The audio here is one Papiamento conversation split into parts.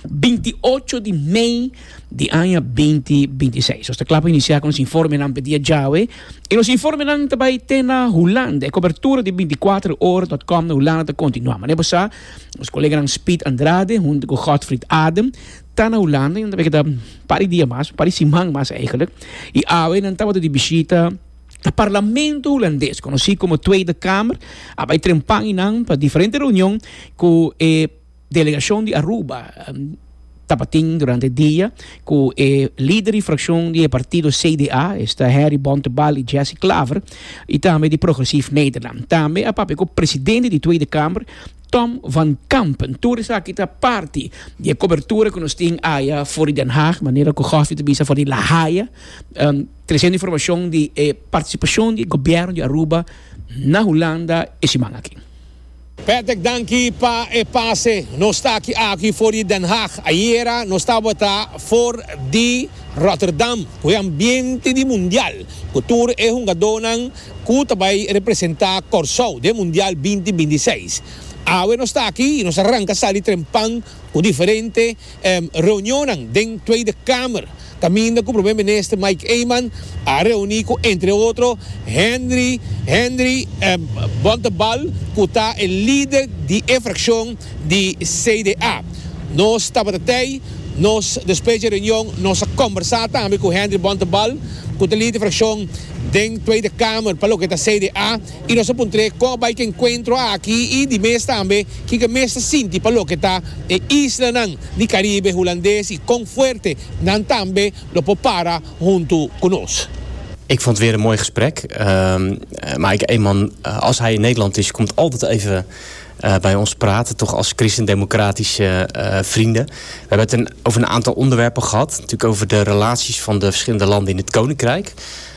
binti ocho di mei di aña binti binti seis. Nos ta kla pa inisiá ku nos informenan p'e dia djawe. I nos informenan ta bai te na Hulanda. E kobertura di binti kuater ora dòt kòm na Hulanda ta kontinuá. Manera bo sa, nos koleganan Speed Andrade huntu ku Godfried Adem ta na Hulanda i nan ta bai keda un par di dia mas, un par di siman mas eigelijk. I awe nan tabata di bishita na Parlamento Hulandes, konosí komo Tweede Kamer. A bai trempa einan pa diferente reunion ku e. Delegacion di Aruba tabatin durante e dia cu e lider di fraccion di e partido CDA, esta Harry Bontebal y Jesse Klaver, y tambe di Progressief Nederland. Tambe a papia cu presidente di Tweede Kamer, Tom van Kampen. Tur esaki ta parti di e cobertura cu nos tin aya for di Den Haag, manera cu Gofi ta bisa for di La Haya, trecendo informacion di e participacion di e gobierno di Aruba na Hulanda e siman aki. Patrick danki pa e pase. Nos ta aki aki for di Den Haag. Ayera nos tabata for di Rotterdam ku e ambiente di mundial ku tur e hungadónan ku ta bai representá Kòrsou den mundial binti binti seis. Awe nos ta aki i nos a ranka sali trempan ku diferente. Reunionnan den Tweede Kamer kaminda ku Prome Minister Mike Eman a reuní ku entre otro Henry Henry Bontebal ku ta e lider di e frakshon di CDA. Nos tabata tei, nos despues di e reunion nos a kombersá tambe ku Henry Bontebal ku ta lider di frakshon den Tweede Kamer pa loke ta CDA. I nos a puntr'é kon a bai ku enkuentro aki i di mes tambe kiko e mester sinti pa loke ta e islanan di Karibe Hulandes i kon fuerte nan tambe lo por para huntu ku nos. Ik vond het weer een mooi gesprek. Maar ik een man als hij in Nederland is komt altijd even bij ons praten toch als christendemocratische vrienden. We hebben het over een aantal onderwerpen gehad natuurlijk over de relaties van de verschillende landen in het koninkrijk.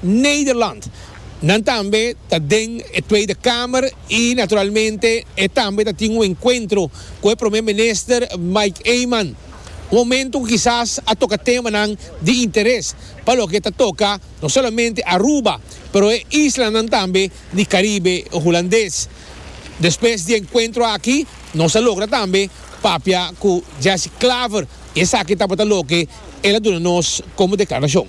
Nederland. Nan tambe ta den e Tweede Kamer i naturalmente e tambe ta tin un enkuentro ku e Prome Minister Mike Eman. Un momentu ku kisas a toka temanan di interes pa loke ta toka no solamente Aruba pero e islanan tambe di Karibe Hulandes. Despues di e enkuentro aki nos a logra tambe papia ku Jesse Klaver i esaki tabata loke el a duna nos komo deklarashon.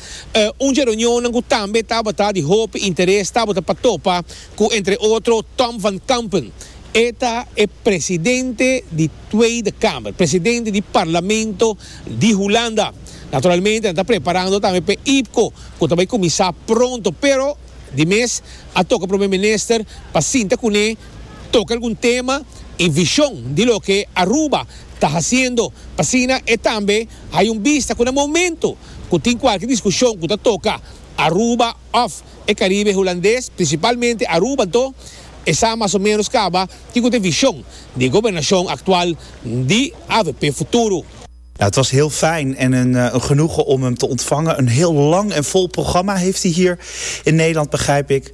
Un dje reunionnan ku tambe tabata di hopi interes tabata pa topa ku entre otro Tom van Kampen, e ta e presidente di Tweede Kamer, presidente di Parlamento di Hulanda. Naturalmente nan ta preparando tambe p'e IPCO ku ta bai kuminsá pronto, pero di mes a toka Prome Minister pa sinta kuné, toka algun tema i vishon di loke Aruba ta hasiendo, p'asina e tambe hay un bista ku na momento, ku tin kualke diskushon ku ta toka Aruba òf e Karibe Hulandes, prinsipalmente Aruba, anto e sa mas o ménos kaba ki ku ta e vishon di e gobernashon aktual di avp Futuro. Het was heel fijn en een genoegen om hem te ontvangen. Een heel lang en vol programma heeft hij hier in Nederland, begrijp ik.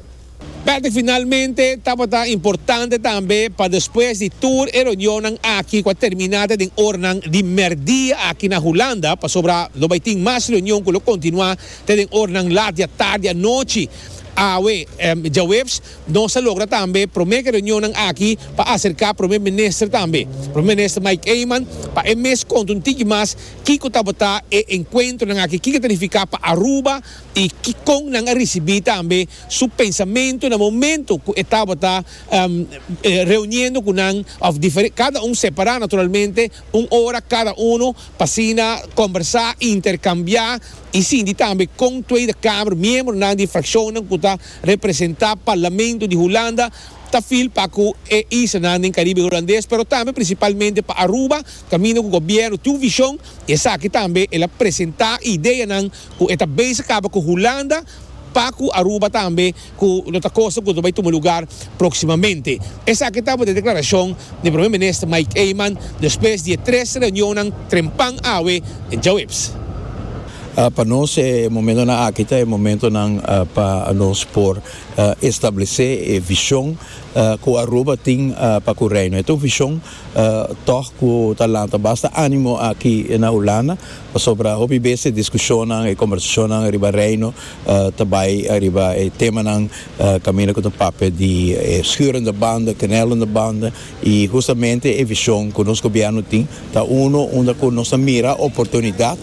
P'esei finalmente tabata importante tambe pa despues di tur e reunionnan aki ku a terminá ta den oranan di mèrdia aki na Hulanda, pasobra lo bai tin mas reunion ku lo kontinuá ta den oranan lat di atardi anochi. Awe, djaweps, nos a logra tambe promé ku e reunionnan aki pa aserká Prome Minister tambe, Prome Minister Mike Eman, pa e mes konta un tiki mas kiko tabata e enkuentronan aki, kiko ta nifiká pa Aruba, i kikon nan a risibí tambe su pensamentu na momentu ku e tabata reuniendo ku nan òf kada un separá naturalmente un ora kada unu pa asina kombersá i interkambiá i sinti tambe kon Tweede Kamer miembronan di frakshonnan ku ta representá Parlamento di Hulanda ta feel pa ku e islanan den Karibe Hulandes pero tambe prinsipalmente pa Aruba kaminda ku gobièrnu tin un vishon i esaki tambe el a presentá ideanan ku e ta base kaba ku Hulanda pa ku Aruba tambe ku lo ta kosa ku ta bai tuma lugar próksimamente. Esaki tabata e deklarashon di Prome Minister Mike Eman despues di e tres reunionnan trempan awe djaweps. Pa nos e momentonan aki ta e momentonan pa nos por establesé e vishon ku Aruba tin pa ku Reino. E ta un vishon tòg ku ta lanta basta ánimo aki na Hulanda. Pasobra hopi bes e diskushonnan, e kombersashonnan riba Reino ta bai riba e temanan kaminda ku ta papia di e schurende banden, knellende banden, i hustamente e vishon ku nos gobièrnu tin ta unu unda ku nos ta mira oportunidat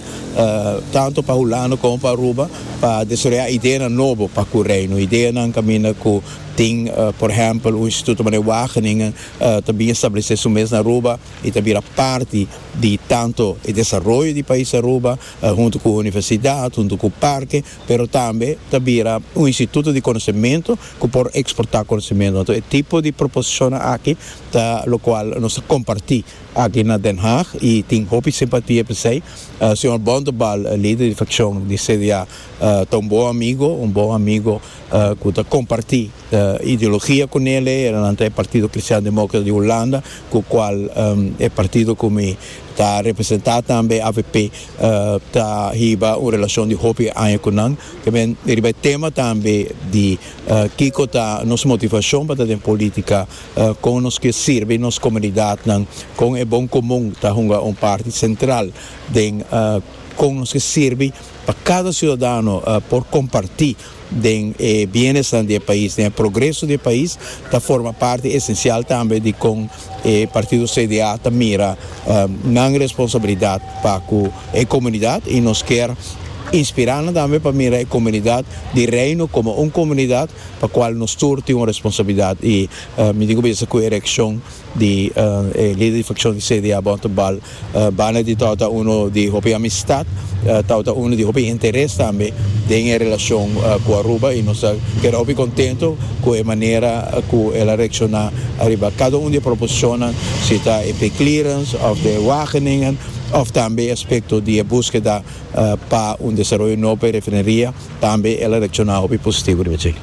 tantu pa Hulanda komo pa Aruba pa desaroyá ideanan nobo pa ku Reino. Ideanan kaminda ku tin, por ehèmpel, un instituto mané Wageningen ta bin establesé su mes na Aruba. E ta bira parti di tanto e desaroyo di pais Aruba, huntu ku universidat, huntu ku parke, pero tambe ta bira un instituto di konosementu ku por eksportá konosementu. Anto e tipo di proposishonnan aki ta lokual nos ta kompartí aki na Den Haag i tin hopi simpatia p'esei. Señor Bontebal, lider di frakshon di CDA, ta un bon amigo, un bon amigo. ku ta kompartí ideologia ku nel, e heranan ta e Partido Kristian Demókrata di Hulanda, ku kual e partido ku mi ta representá tambe, avp, ta hiba un relashon di hopi aña ku nan. Ta bini riba e tema tambe di kiko ta nos motivashon pa ta den polítika, kon nos ke sirbi nos komunidatnan, kon e bon komun ta hunga un parti sentral den kon nos ke sirbi. Pa kada siudadano por kompartí den e bienesnan di e pais, den e progreso di e pais, ta forma parti esensial tambe di kon e partido CDA ta mira nan responsabilidat pa ku e komunidat i nos kier inspirá nan tambe pa mira e komunidat di Reino komo un komunidat pa kual nos tur tin un responsabilidat i mi tin ku bisa ku e reakshon di e lider di fraccion di CDA Botto Bal, banda di tawata uno di hopi amistad, tawata uno di hopi interes tambe den e relacion cu Aruba y nos ta keda hopi contento cu e manera cu el a reacciona ariba cada un di e proposicionnan, si ta e pay clearance of de wageningen of tambe e aspecto di e buskeda. pa un desaroyo nobo pa e refineria, tambe el a reacciona hopi positivo riba dje.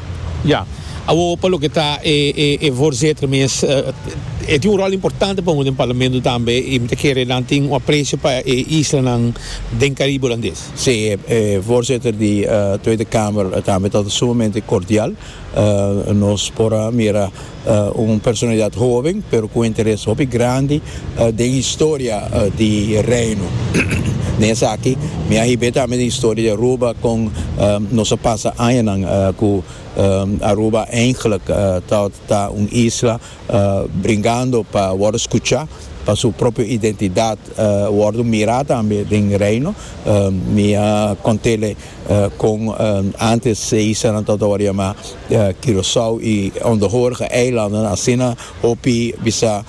Ya. Awor pa loke ta e voorzitter mes, e tin un rol importante pa hopi den parlamento tambe y mi ta kere nan tin un aprecio pa e islanan den Caribe Holandés. Sí, e voorzitter di Tweede Kamer tambe ta sumamente cordial, nos por a mira. Un personalidat hoben pero ku un interes hopi grandi den historia di Reino. Den esaki mi a hib'é tambe den historia di Aruba kon nos a pasa añanan ku Aruba eindelijk ta ta un isla bringando pa wòrdu skuchá, pa su propio identidat wòrdu mirá tambe den Reino. Mi a kont'é Kon antes se hisa nan tabata wòrdu yamá Curaçao i Ondohorge eilandennan, asina hopi bisa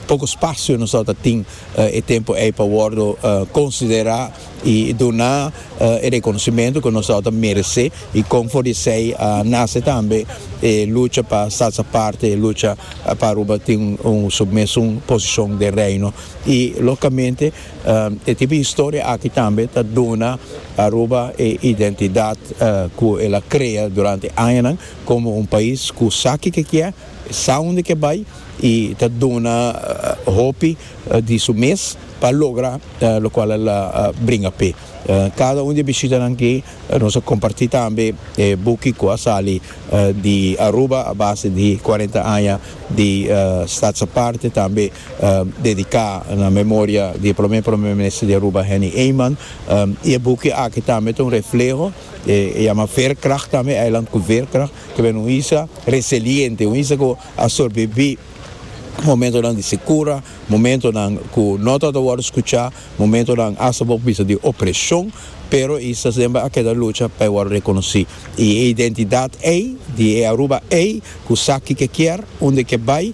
poko spasio nos tabata tin e tempu ei pa wòrdu konsiderá i duna e rekonosimentu ku nos tabata meresé i kon for di esei a nase tambe e lucha pa salsa parti e lucha pa Aruba tin un su mesun posishon den Reino i lógikamente E tipo historia aki tambe ta duna Aruba e identidad cu el a crea durante añanan como un pais cu sa kico e kier, sa unda kier bay y ta duna hopi di su mes pa logra locual el a bringa p'e. Cada un di e bishitanan aki nos a comparti tambe e buki cu a sali di Aruba a base di cuarenta aña di Stadsaparte tambe dediká na memoria di e promé Promé Minister di Aruba Henny Eman i e buki aki tambe ta un refleho e yama Veerkracht tambe e eiland ku Veerkracht ku bini un isla reseliente un isla ku a sorbibí momentonan di sikura momentonan ku no ta ta wòrdu skuchá momentonan asta bo bisa di opreshon pero e isla semper a keda lucha pa e wòrdu rekonosí. I e identidat ei di e Aruba ei ku sa kiko kier, unda ke bai,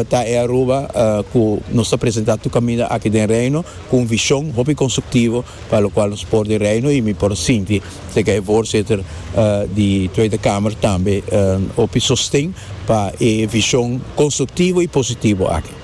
ta e Aruba ku nos ta presentá tur kaminda aki den Reino ku un vishon hopi konstruktivo pa lokual nos por di Reino i mi por sinti serka e Voorzitter di Tweede Kamer tambe hopi sosten pa e vishon konstruktivo i positivo aki.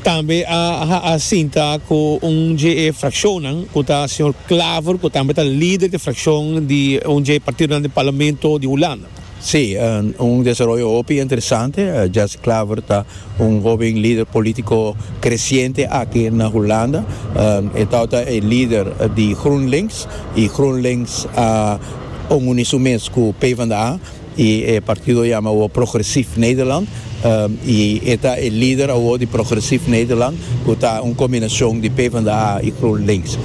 Tambe a a sinta ku un dje e frakshonnan ku ta señor Klaver ku tambe ta lider di frakshon di un dje e partidonan di parlamento di Hulanda. Sí, un desaroyo hopi interesante. Jesse Klaver ta un hoben lider polítiko kresiente aki na Hulanda. E tau ta e lider di GroenLinks i GroenLinks a onguni su mes ku PvdA. Y e partido yama awor Progressief Nederland y e ta e lider awor di Progressief Nederland cu ta un combinacion di PvdA y GroenLinks.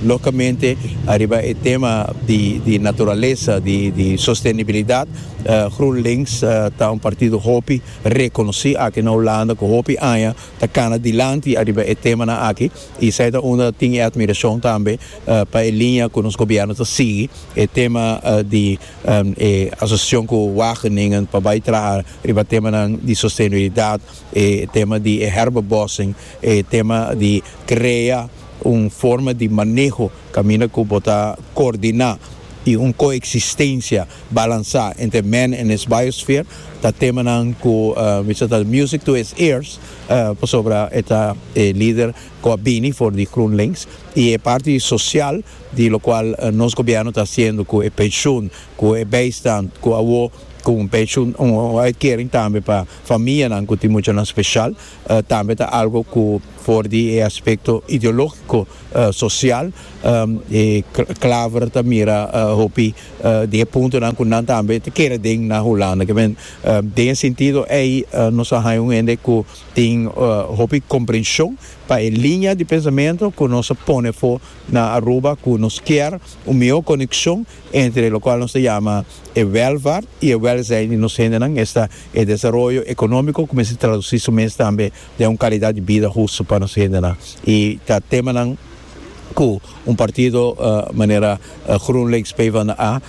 Locamente ariba e tema di naturalesa di sostenibilidad GroenLinks ta un partido hopi reconoci aki na Hulanda cu hopi aña ta cana dilanti ariba e temanan aki y esai ta unda tin e admiracion tambe pa e linea cu nos gobierno ta sigui e tema di e asosiashon ku Wageningen pa bai traha riba temanan di sostenibilidat, e tema di e herbebossing, e tema di krea un forma di maneho kaminda ku bo ta koordiná i un koeksistensia balansá entre men en es biosphere ta temanan ku bishi ta music to his ears pasobra e ta e lider ku a bini for di GroenLinks i e parti sosial. di locual nos gobierno ta haciendo cu e pensioen, cu e bijstand, cu awor cu un pensioen, un uitkering tambe pa famianan cu tin muchanan special, tambe ta algo cu for di e aspecto ideologico, social, e Klaver ta mira hopi di e puntonan cu nan tambe ta kere den na Hulanda. Kiben den e sentido ey nos a haya un hende cu tin hopi comprension pa e linea di pensamento cu nos a pone for Na Aruba cu nos kier un miho coneccion entre locual nos ta yama e welvaart y e welzijn di nos hendenan, esta e desaroyo economico cu mester traduci su mes tambe den un calidad di bida hustu pa nos hendenan y ta temanan cu un partido manera GroenLinks PvdA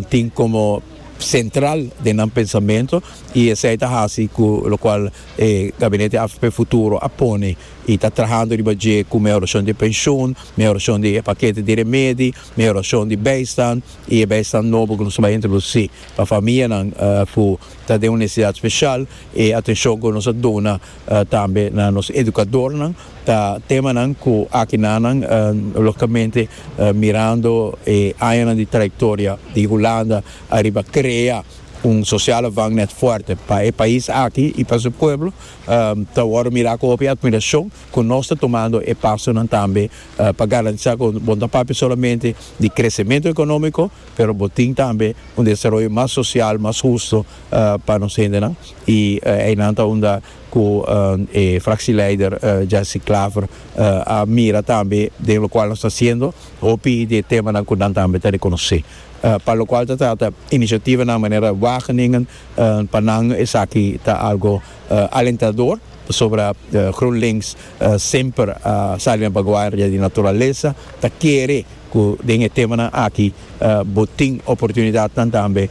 tin como central den nan pensamento y esey ta haci cu locual e Gabinete AVP Futuro a pone. y ta trahando riba dje cu mehoracion di e pension, mehoracion di e pakete di remedi, mehoracion di bijstand y e bijstand nobo cu nos a bai introduci pa famianan cu ta den un necesidad special, e atencion cu nos a duna tambe na nos educadornan, ta temanan cu aki nanan logicamente mirando e añanan di trayectoria di Hulanda ariba crea un social avangnet fuerte pa e pais aki y pa su pueblo Ta wòrdu mirá ku hopi atmirashon ku nos ta tumando e pasonan tambe pa garantisá ku bo no ta papia solamente di kresementu ekonómiko, pero bo tin tambe un desaroyo mas sosial, mas hustu pa nos hendenan. I einan ta unda ku e fraksieleider Jessie Klaver a mira tambe den lokual nos ta hasiendo hopi di e temanan ku nan tambe ta rekonosé pa lokual ta trata inisiativanan manera Wageningen, Pa nan esaki ta algo alentador pasobra GroenLinks semper a sali na baguaria di naturalesa, ta kere ku den e temanan aki bo tin oportunidatnan tambe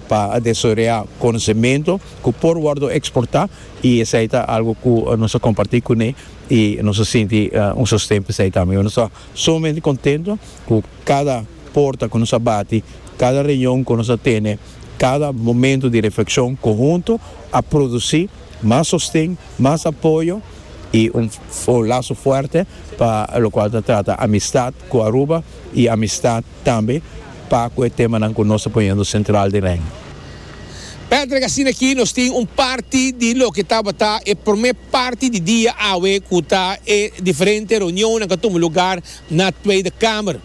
pa desaroyá konosementu ku por wòrdu eksportá i esei ta algo ku nos a kompartí kuné i nos a sinti un sosten pa esei tambe. Nos ta sumamente kontentu ku kada porta ku nos a bati, kada reunion ku nos a tene, Cada momento di reflexion conhunto a produci mas sosten, mas apoyo y un laso fuerte pa locual ta trata amistad cu Aruba y amistad tambe pa cu e temanan cu nos ta poniendo central den REN. Patrick, Asina aki nos tin un parti di loke tabata e prome parti di dia awe cu ta e diferente reunionnan cu a tuma lugar na Tweede Kamer.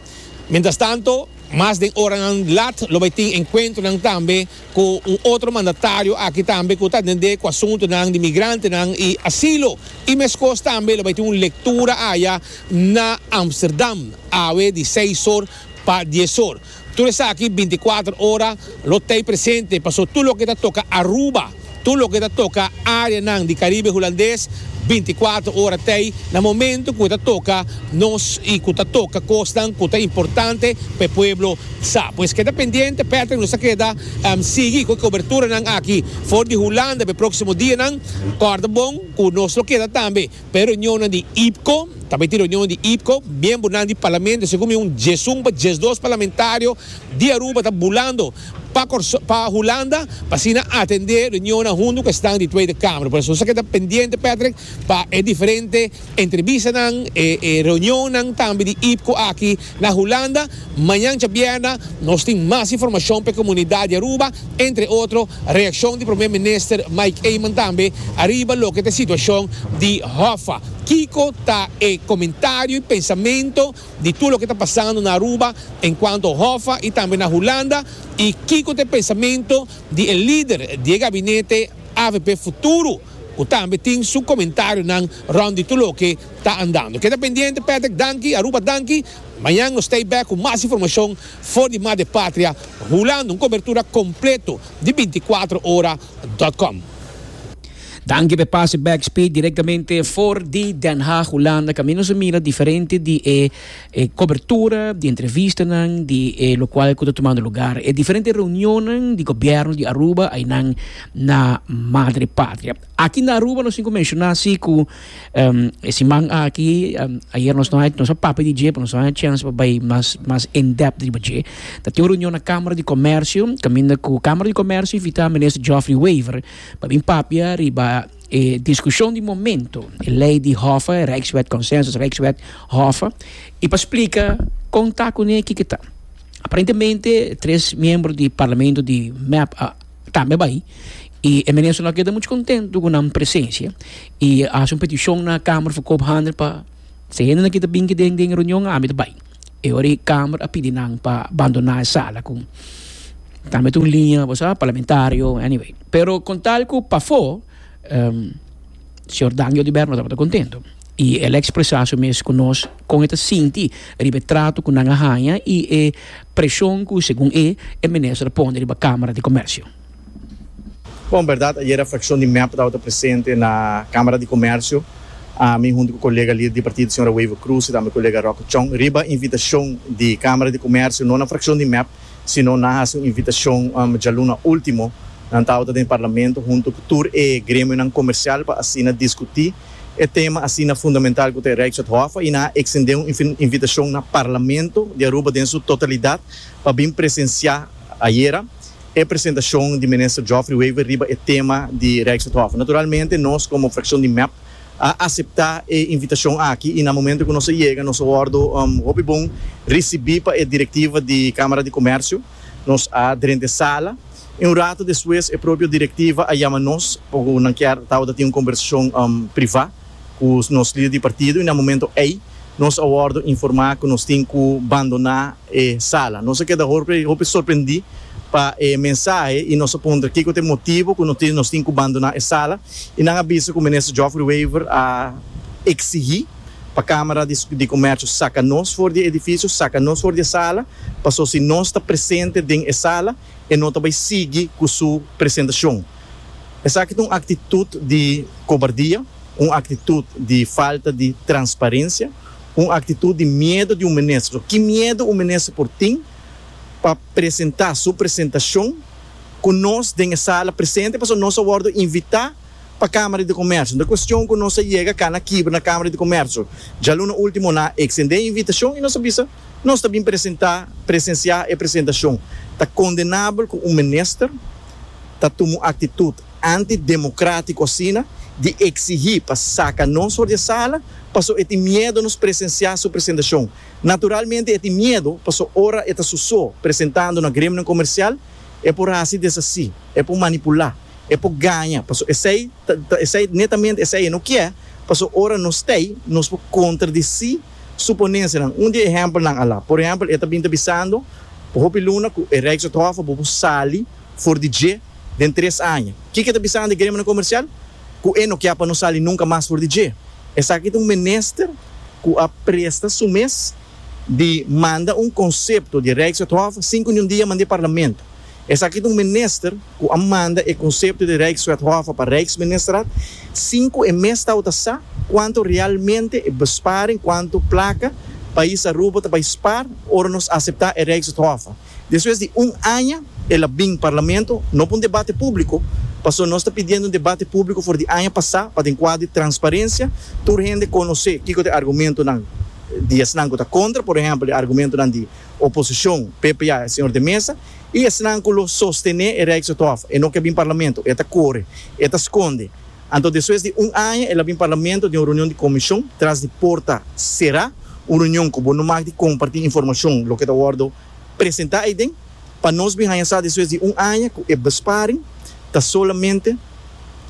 Mientras tanto, Mas den oranan lat lo bai tin enkuentronan tambe ku un otro mandatario aki tambe ku ta atendé ku asuntunan di migrantenan i asilo. I meskos tambe lo bai tin un lektura aya na Amsterdam awe di seis or pa dies or. Tur esaki binti kuater ora lo t'ei presente paso tur loke ta toka Aruba. Tur loke ta toka areanan di Caribe Hulandes binticuatro ora t'ey na momento cu e ta toka nos y cu ta toka cosnan cu ta importante pa e pueblo sa. Pues keda pendiente Patrick nos ta keda sigui cu e coberturanan aki for di Hulanda p'e proximo dianan. Corda bon cu nos lo keda tambe. P'e reunionnan di IPCO, tambe tin reunionnan di IPCO, miembernan di Parlamento segun mi un diesun pa diesdos parlamentario di Aruba ta bulando pa pa Hulanda pa asina atende reunionnan huntu ku esnan di Tweede Kamer. Por eso nos ta keda pendiente Patrick pa e diferente entrebistanan, e e reunionnan tambe di IPCO aki Na Hulanda, mañan djabièrnè nos tin mas informashon pa e komunidat di Aruba, entre otro, reakshon di Promé Minister Mike Eman tambe ariba loke ta e situashon di Hoffa. Kiko ta e komentario i pensamentu di tur loke ta pasando na Aruba enkuanto Hoffa i tambe na Hulanda i kiko ta e pensamentu di e lider di e gabinete avp Futuro, ku tambe tin su komentarionan rònt di tur loke ta andando. Keda pendiente Patrick danki Aruba danki Mañan nos ta e bèk ku mas informashon for di Madre Patria hulando un kobertura kompleto di binti kuater ora dòt kòm. Danki p'e pase backspeed direktamente for di Den Haag Hulanda kaminda nos a mira diferente di e. E cobertura di entrevistanan di e locual cu ta tumando lugar e diferente reunionnan di gobierno di Aruba aynan na Madre Patria. Aki na Aruba nos tin cu menciona si cu e siman aki, ayer nos no a nos a papia di dje pero nos no a haña chance pa bay mas mas in depth riba dje. Ta tin un reunion na Camara di Comercio caminda cu Camara di Comercio invita Minister Geoffrey Wever pa bin papia riba E diskushon di momentu, e lei di Hofer, e Rijkswet, Consensus Rijkswet, Hofer, i pa splika kon ta ku ne kiko ta. Aparentemente tres miembro di parlamento di mep a tambe bai i e minister no a keda muchu kontentu ku nan presensia i a hasi un petishon na Kamer for koop hande pa si e hende na kita bin den den e reunion ami ta bai. E ora e kamer a pidi nan pa bandoná e sala ku tambe ta un liña bo sa parlamentario anyway pero kon tal ku pafó señor Danjo Diber no tabata kontento i el a ekspresá su mes ku nos kon e ta sinti riba e trato ku nan a haña i e preshon ku segun e e minister a pone riba Kamara di Komersio. Bon, berdad, ayera fraccion di mep tabata presente na Camara di Comercio, ami hunto cu colega lider di partido señora Wever Croes y tambe colega Roque Chong, riba invitacion di Camara di Comercio, no na fraccion di mep, sino nan haci un invitacion djaluna ultimo, nan tabata den e Parlamento hunto cu tur e gremionan comercial pa asina discuti e tema asina fundamental cu ta e Rijkswetthof y nan a extende un invitacion na Parlamento di Aruba den su totalidad pa bin presencia ayera. e presentacion di Minister Geoffrey Wever riba e tema di Rijkswethof. Naturalmente nos como fraccion di mep a acepta e invitacion aki y na momento cu nos a yega nos a wordo hopi bon ricibi pa e directiva di Camara di Comercio. Nos a drenta e sala y un rato despues e propio directiva a yama nos pacu nan kier tabata tin un conversacion priva. Ku nos lider di partido i na momento ei nos a wòrdu informá ku nos tin ku bandoná e sala. Nos a keda hopi sorprendí pa e mensahe i nos a puntra kiko ta e motibu ku nos tin ku bandoná e sala i nan a bisa ku Minister Geoffrey Wever a eksigí pa Kámara di Komèrshio saka nos for di e edifisio, saka nos for di e sala, paso si nos ta presente den e sala, e no ta bay sigui cu su presentacion. Esaki ta un actitud di cobardia, un actitud di falta di transparencia, un actitud di miedo di un minister. Ki miedo un minister por tin pa presenta su presentacion cu nos den e sala presente pasobra nos a wordo invita pa Kamara di Komersio. Nan ta kuestion ku nos a yega kana kibra na Kamara di Komersio. Dja luna último nan a eksendé e invitashon i nos a bisa nos ta bin presentá, presensiá e presentashon. Ta kondenabel ku un minister ta tuma un aktitut antidemokratiku asina di eksigí pa saka nos for di e sala paso e tin miedo nos presensiá su presentashon. Naturalmente e tin miedo paso ora e ta su so presentando na gremionan komersial, E por hasi desasi, e por manipulá, e por gaña, paso esei ta ta esei netamente esei e no kier, paso ora nos t'ei nos por contradisí suponencianan. Un di e ehempelnan a la, por ehempel, e ta bin ta bisando por hopi luna cu e Rijkshof a bo por sali for di dje den tres aña. Kiko e ta bisando e gremianan comercial? Cu e no kier pa no sali nunca mas for di dje. Esaki ta un minister cu a presta su mes. di manda un konsepto di Rijkswethof sin ku niun dia manda e Parlamento. Esaki ta un minister ku a manda e konsepto di Rijkswethof pa Rijksministerat sin ku e mes tabata sa kuantu realmente e besparing, kuantu plaka, pais Aruba ta bai spaar ora nos aseptá e Rijkswethof. Despues di un aña el a bin Parlamento, no pa un debate públiko, pasobra nos ta pidiendo un debate públiko for di aña pasá pa den kuadro di transparencia tur hende konosé kiko ta e argumentonan di esnan ku ta kontra, por ehèmpel e argumentonan di oposishon, ppa, e señor de Mesa, i esnan ku lo sostené e Rijkshof. E no ke bin Parlamento, e ta kore, e ta skonde. Anto despues di un aña el a bin Parlamento den un reunion di Comishon tras di porta será, un reunion ku bo no mag di kompartí informashon loke ta wòrdu presentá eiden, pa nos bin haña sa despues di un aña ku e besparing ta solamente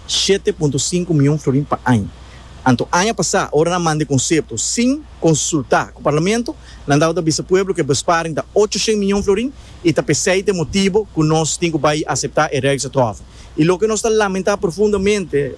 shete punto sinku mion florin pa aña. Anto aña pasá ora nan manda e konsepto sin konsultá ku Parlamento, nan tabata bisa pueblo ku e besparing ta ocho shent mion florin i ta p'esei ta e motibu ku nos tin ku bai aseptá e Rijksatrofe, I loke nos ta lamentá profundamente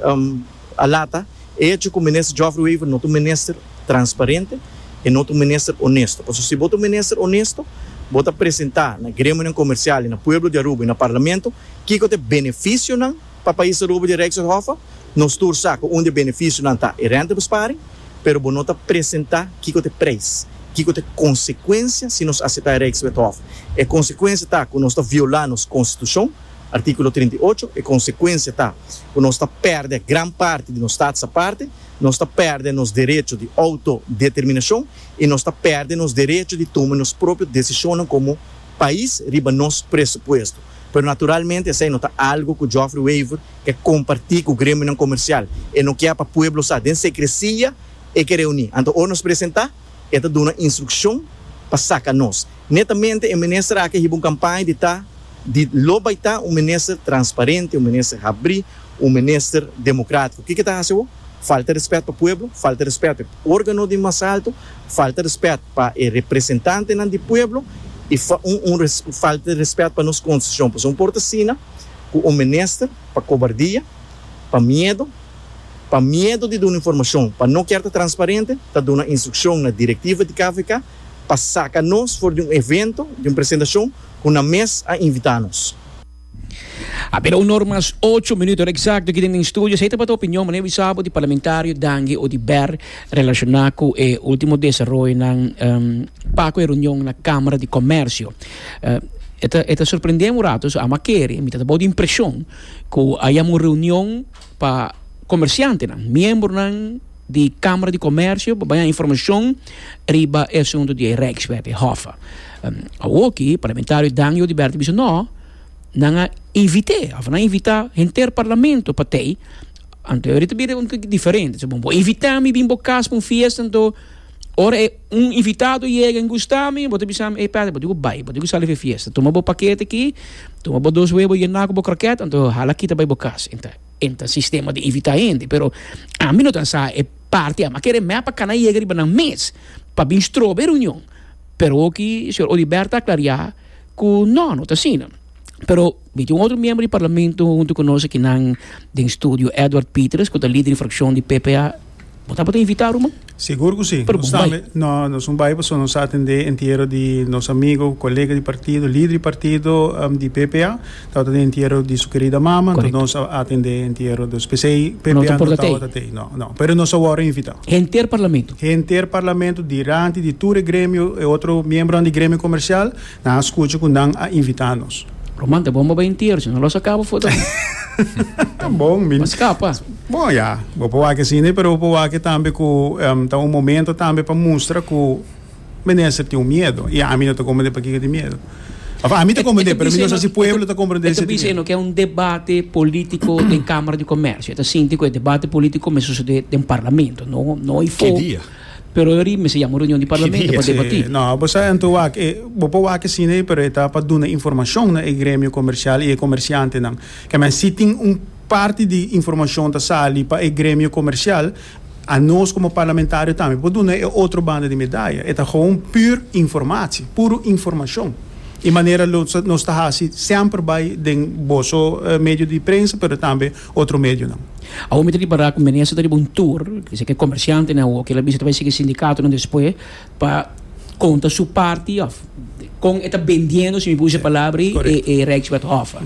a lata e echo ku Minister Geoffrey Wever no ta un minister transparente, e no ta un minister onesto. Pasobra si bo ta un minister onesto, bo ta presentá na gremionan komersial i na pueblo di Aruba i na Parlamento kiko ta e benefisionan pa pais Aruba di Rijkshof. Nos tur sa ku un di e benefisionan ta e rentebesparing, pero bo no ta presentá kiko ta e preis, kiko ta e konsekuensia si nos aseptá e Rijkswethof. E konsekuensia ta ku nos ta violá nos konstitushon. Artíkulo trinta i ocho, E konsekuensia ta ku nos ta pèrdè gran parti di nos stats aparte, nos ta pèrdè nos derecho di outodeterminashon i nos ta pèrdè nos derecho di tuma nos propio desishonnan komo pais riba nos presupuesto. Pero naturalmente esei no ta algu ku Joffrey Wever ke kompartí ku gremionan komersial. E no kier pa pueblo sa den sekresia e ke reuní. Anto ora nos presentá? E ta duna instrukshon pa saka nos. Netamente e minister aki a hiba un kampaña di ta di lo bai ta un minister transparente, un minister habrí, un minister demokratiko. Kiko e ta hasi awor? Falta rèspèt pa pueblo, falta rèspèt pa e órgano di mas alto, falta rèspèt pa e representantenan di pueblo i falta rèspèt pa nos konstitushon. Pasobra no por ta asina ku un minister pa kobardia. Pa miedo, Pa miedo di duna informashon, pa no kier ta transparente, ta duna instrukshon na direktiva di KVK pa saka nos for di un evento di un presentashon ku nan mes a invitá nos. A bira un or mas ocho minut, ora eksakto ki den den studio. Esei tabata opinion, mane wisa bo, di parlamentario Dangi Odiber relashoná ku e último desaroyonan pako e runion na Kamara di Komèrsio. E ta sorprendé un rato, so amo a kere, mi ta tabou di impreshon. Ku a yama un reunion pa komersiantenan, miembronan di Kamara di Komersio pa baña informashon riba e asuntu di e Rijkswet, e Hoffe. Awoki parlamentario Dan Jody Bert a bisa no, nan a invit'é òf nan invitá henter parlamento pa tei. Anto e ori ta bira un toki diferente. Bo invitá mi bin bo kas pa un fiesta anto ora e. Un invitado yega en Gustami, bo ta bisa mi, ey Patrick, bo diko bai, bo diko sali for e fiesta. Tuma bo pakete aki, tuma bo dos webo yena ku bo krokèt, anto hala kita bai bo kas. E ta, e ta sistema di invitá hende. Pero ami no ta sa e parti ama. Kere mep a kana yega riba nan mes pa bin stroba e reunion. Pero oki señor Odibert a aklariá ku no, no ta asina. Pero. Miti un otro miembro di Parlamento huntu ku nos akinan den studio, Edward Pitres, ku ta lider di frakshon di PPA. Bo tabata invitá, Ruman? Sigur ku si. Pero bon bai. No, nos bon bai pasobra nos sa atendé entiero di nos amigo, kolega di partido, lider di partido di PPA. Tabata den entiero di su kerida mama, enton nos a atendé entiero. Dus p'esei PPA no tabata t'ei. No, no. Pero nos a wòrdu invitá. Henter Parlamento? Henter Parlamento, diranti, di tur e gremio, e otro miembronan di gremio komersial, Nan a scucha cu nan a invita nos. Roman, ta bon bo bay intier, si no lo sa cabo foto aki. Ta bon, mi. Pa scapa. Bon, ya, bo por wak asina, pero bo por wak tambe cu ta un momento tambe pa mustra cu menester tin un miedo. Y ami no ta comprende pakico di miedo. Of, ami ta comprende, pero mi no sa si pueblo ta comprende e sentimiento. E ta bisa e no ke un debate politico den Camara di Comercio. E ta sinti cu e debate politico mester sucede den Parlamento, no, no afor. Ki dia? Pero e ori mester yama un reunion di Parlamento pa debatí. No, bo sa anto wak e, bo por wak asina ei pero e ta pa duna informashon na e gremio komershial i e komershiantenan. Kman si tin un parti di informashon ta sali pa e gremio komershial, a nos komo parlamentario tambe por duna e otro banda di medaya. E ta gewoon pür informatie, puro informashon. I manera lo nos ta hasi semper bai den boso medio di prensa pero tambe otro medionan. Awor mi ta ripará ku Menezes ta riba un tur, kisa ke komersiantenan awor ke el a bisa ta bai sigi sindikatonan despues pa konta su parti òf kon e ta bendiendo, si mi por usa e palabra ei, e Rijkswet Hof.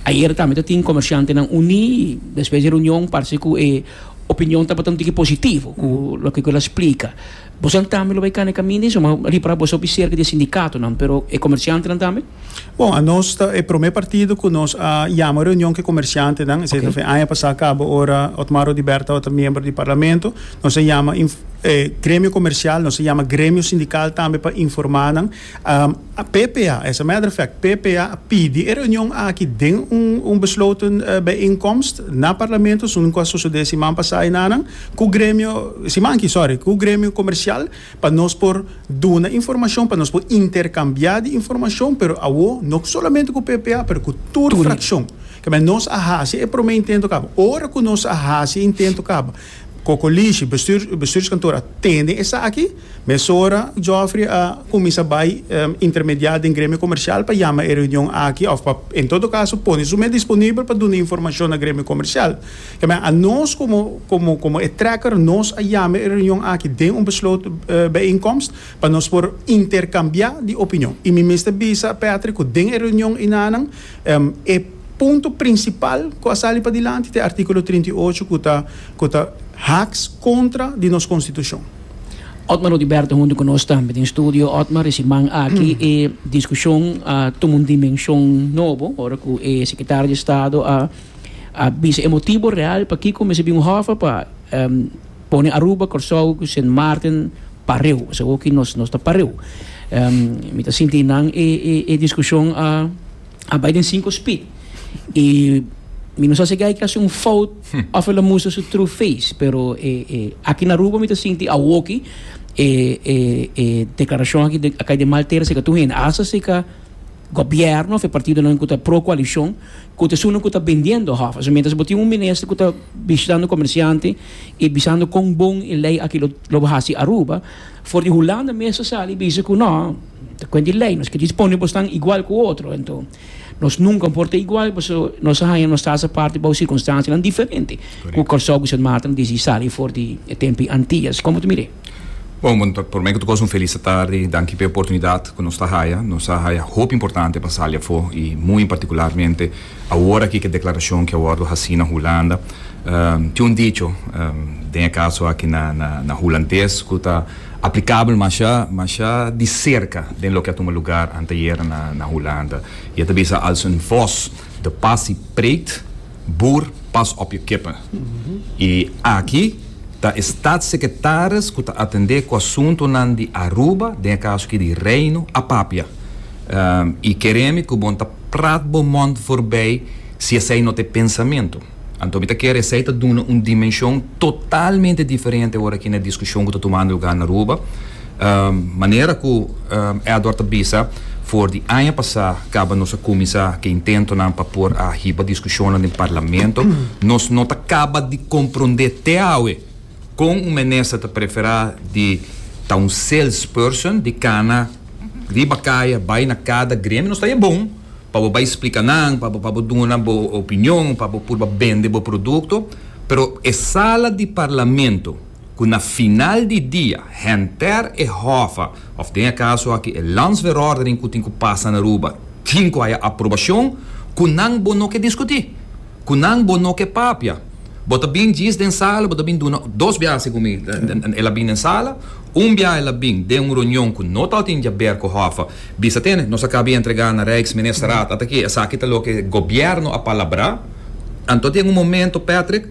Ayer tambe ta tin komersiantenan uní i despues di e reunion parse ku e opinion tabata un tiki positivo ku loke ku el a splika. Boso tambe lo bai kana e kaminda ei, suma ripará boso a hopi serka di e sindikatonan, pero e komersiantenan tambe? Bon, anos ta e prome partido ku nos a yama reunion ku e komersiantenan. Esei ta fin aña pasá kaba ora Otmar Odibert tabata miembro di Parlamento. Nos a yama e gremio komersial, nos a yama gremio sindikal tambe pa informá nan. PPA, as a matter of fact, PPA a pidi e reunion aki den un un besloten bijeenkomst na Parlamento, esun ku a sosodé siman pasá ei nanan, ku gremio, siman aki, sorry, ku gremio komersial Pa nos por duna informashon, pa nos por interkambiá di informashon, pero awo no solamente ku PPA pero ku tur frakshon. Kamba nos a hasi e promé intento kaba. Ora ku nos a hasi e intento kaba, kokolishi, bestuur, bestuurskantoor a tende esaki, mesora Geoffrey a kuminsá bai intermediá den Gremio Komershial pa yama e reunion aki òf pa en todo kaso pone su mes disponibel pa duna informashon na Gremio Komershial. Keme a nos komo komo komo e trekker nos a yama e reunion aki den un besloot bijeenkomst pa nos por interkambiá di opinion i mi mester bisa Patrick ku den e reunion enanan e punto prinsipal ku a sali padilanti ta e artíkulo trinta i ocho ku ta ku ta haks kontra di nos konstitushon. Otmar Oduberto huntu ku nos tambe den studio. Otmar, e siman aki e diskushon a tuma un dimenshon nobo ora ku e sekretario di Estado a A bisa e motibo real pakiko mester bin un hòffa pa pone Aruba, Kòrsou ku Sint Maarten pareu. Pasobra hopi nos nos ta pareu. Mi ta sinti nan e e e diskushon a a bai den sinku spit. I mi no sa si gai ke a hasi un fout òf el a mustra su true face, pero e e aki na Aruba mi ta sinti awoki e e e deklarashon aki a kai den maltera seka tur hende, asta seka Gobierno of e partidonan ku ta pro koalishon ku ta esun ku ta bendiendo hof. Also mientras bo tin un minister ku ta bishitando komersiante i bisando kon bon e lei aki lo hasi Aruba, for di Hulanda mes ta sali bisa ku no, ta kuent di lei, nos ke dispone bo stan igual ku otro. Enton nos nunka por ta igual paso nos a haña nos tas aparte bou sirkunstansianan diferente ku Kòrsou ku Sint Maarten disi sali for di e tempu i Antillas. Komo ta mira e? Bon, bon ta, prome ku ta kos un felis atardi. Danki pa e oportunidat ku nos ta haya. Nos a haya hopi importante pa sali afó i muy en partikularmente awor aki ku e deklarashon ku a wòrdu hasi na Hulanda. Tin un dicho den e kaso aki na, na, na hulandes ku ta aplikabel mashá, mashá di serka den loke a tuma lugar anteayer na, na Hulanda. I e ta bisa, Als een vos de pas i preekt, Boer pas op je kippen. Y aki ta e Staatssecretaris cu ta atende cu asuntonan di Aruba, den e caso aki di Reino Apapia. Y kere mi cu bon ta praat bo mond voorbij si esey no ta e pensamento. Anto mi ta kere esey ta duna un dimension totalmente diferente ora aki na e discusion cu ta tumando lugar na Aruba. Manera ku Edward ta bisa, for di aña pasá kaba nos a kuminsá ke intentonan pa por a hiba diskushonnan den parlamento, nos no ta kaba di komprondé te awe kon un minister ta preferá di ta un salesperson, di kana riba kaya bai na kada gremio. Nos ta e bon pa bo bai splika nan, pa bo pa bo duna bo opinion, pa bo purba bende bo produkto, pero e sala di parlamento. ku na final di dia henter e hòfa òf den e kaso aki e landsverordening ku tin ku pasa na Aruba tin ku haya aprobashon ku nan bo no ke diskutí, ku nan bo no ke papia. Bo ta bin djis den sala, bo ta bin duna dos biaha segun mi el a bin den sala, un biaha el a bin den un reunion ku no tabata djaber ku hòfa bisa tene nos a kabi entregá na Rijksministerraad ata ki esaki ta loke gobierno a palabrá. Anto den un momento Patrick.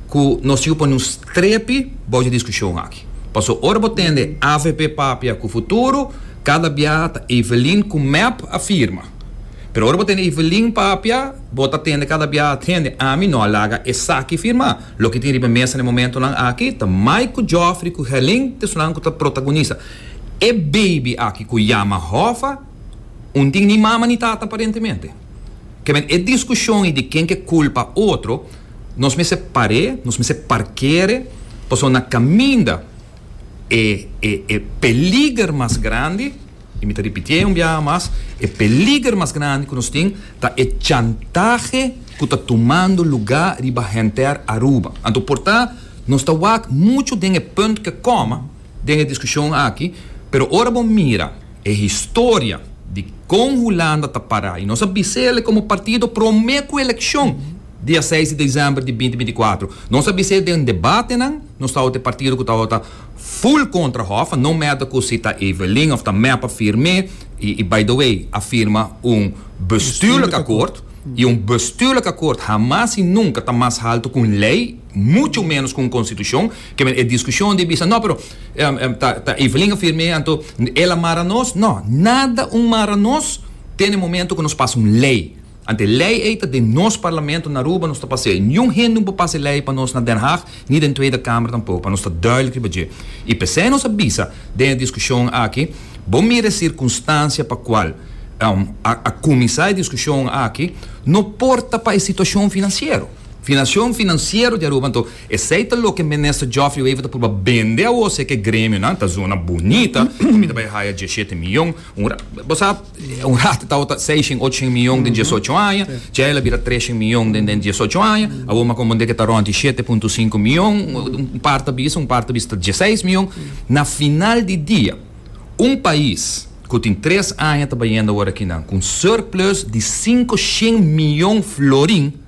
cu nos yu pone un strepi bou dje discusion aki. Paso ora bo tende avp papia cu futuro, cada bia ta Evelyn cu mep a firma. Pero ora bo tende Evelyn papia, bo ta tende cada bia tende ami no a laga esaki firma. Loke tin riba mesa na e momentonan aki ta mai cu Geoffrey cu Helin ta esunnan cu ta protagonisa e baby aki cu yama Hoffa, un tin ni mama ni tata aparentemente. Kèmen e diskushon i di ken ke kulpa otro, nos mester par'é, nos mester parkere, pasobra na kaminda e e e peliger mas grandi, i mi ta ripitié un biaha mas, e peliger mas grandi ku nos tin ta e chantahe ku ta tumando lugá riba henter Aruba. Anto por ta nos ta wak muchu den e punt ke kòma den e diskushon aki, pero ora bo mira, E historia di kon Hulanda ta para i nos a bisa el komo partido promé ku elekshon dia seis di desèmber di binti binti i kuater. Nos a bisa den debatenan nos tabata e partido ku tabata ful kontra Hoffa, no mèda ku si ta Evelyn òf ta mèp a firm'é i by the way a firma un bestuurlijk akkoord i un bestuurlijk akkoord hamas i nunka ta mas haltu ku un lei, mucho menos ku un konstitushon. Kimen e discusion di bisa, no pero ta Evelyn a firme anto el a mara nos, no, nada un mara nos te na momento cu nos pasa un ley, anto e ley ey ta den nos parlamento na Aruba nos ta pasey, niun hende un por pasa e ley pa nos na Den Haag ni den Tweede Kamer tampoco, pa nos ta duidelijk riba dje. Y pesey nos a bisa den e discusion aki, bo mira e circunstancia pa cual a cuminsa e discusion aki, no por ta pa e situacion financiero, finacion financiero di Aruba, anto Esei ta loke Minister Geoffrey Wever ta pruba bende awor si eke gremionan ta zona bunita ku mi ta bai haya diesshete miyon un ra bo sa un rato tabata seishen ochoshen miyon den diesocho aña djaei la bira treshen miyon den den diesocho aña awor m'a komprondé ke ta rond di shete punto sinku miyon un part ta bisa un part ta bisa ta dieseis miyon na final di dia un pais ku tin tres aña ta bayendo awor akinan ku un surplus di sinku shen miyon florin.